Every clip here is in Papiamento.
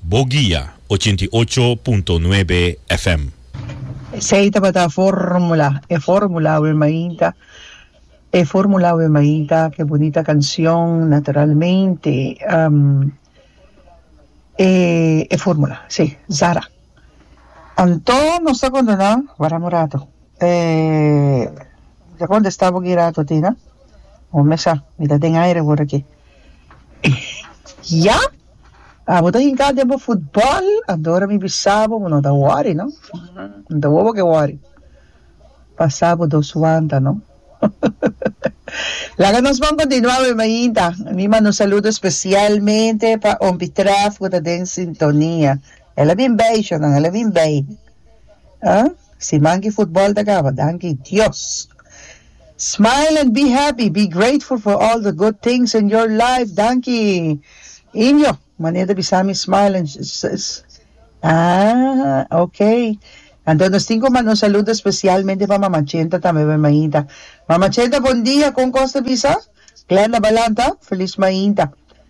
Bo guia ochenta i ocho punto nuebe FM. Esei tabata e formula, e formula we mainta, e formula we mainta, ke bunita kansyon naturalmente ehm e e formula si Zara. Anto nos ta kondona wara murato eh mi ta kontesta bo ki rato tin a, o mesa mi ta den aire wor aki. Ya! Abo ta hinká den bo futbòl, antora mi bisa bo bo no ta wòri, no? N ta wou bo ke wòri. Pasá bo dos wanta, no? Laga nos bon kontinuá wei mainta. Mi manda un saludo spesialmente pa Ompitrèf ku ta den sintonia. El a bin bay Shonan el a bin bay ah si manki futbol ta caba danki Dios smile and be happy be grateful for all the good things in your life danki Indio manera ta bisami smile and ah ok anto nos tin cu manda un saludo especialmente pa mama Chenta tambe bay mainta mama Chenta bon dia con cos ta bisa Glenda Balanta feliz mainta.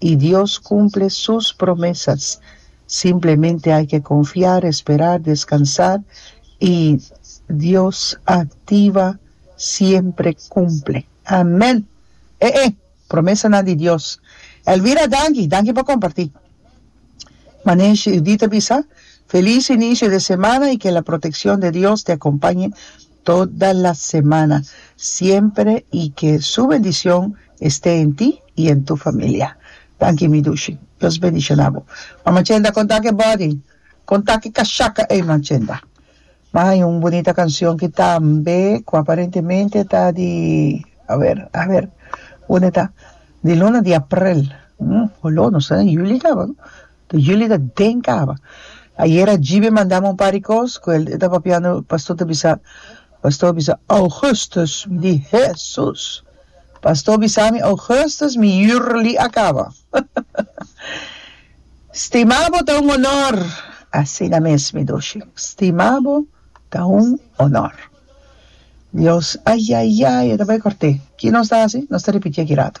I Dios cumple sus promesas. Simplemente hay ke confiar, esperar, descansar i Dios activa siempre cumple. Amen! E e promesanan di Dios. Elvira danki, danki pa comparti. Manesh Judith a bisa, Feliz inicio de semana y que la proteccion de Dios te acompañe Toda la semana, siempre y que su bendición este en ti y en tu familia. Danki mi Dushi. Dios bendiciona bo. Mama Chenda con ta que body? Con ta que casaca ey ma Chenda? Ma hay un bonita cancion que tambe cu aparentemente ta di aver aver unde ta di luna di april, hm holo no sa juli caba no Te julio ta den caba. Ayera Jibe mandami un par di cos cu e ta papiando, pastor ta bisa, pastor bisa Augustus, mi di Hesus! Pastor bisami Augustus mi jurli a caba. Stimabo ta un honor, asina mes mi dushi, stimabo ta un honor. Dios, ayayay, e ta bay corte. Ki nos ta haci? Nos ta repiti aki rato.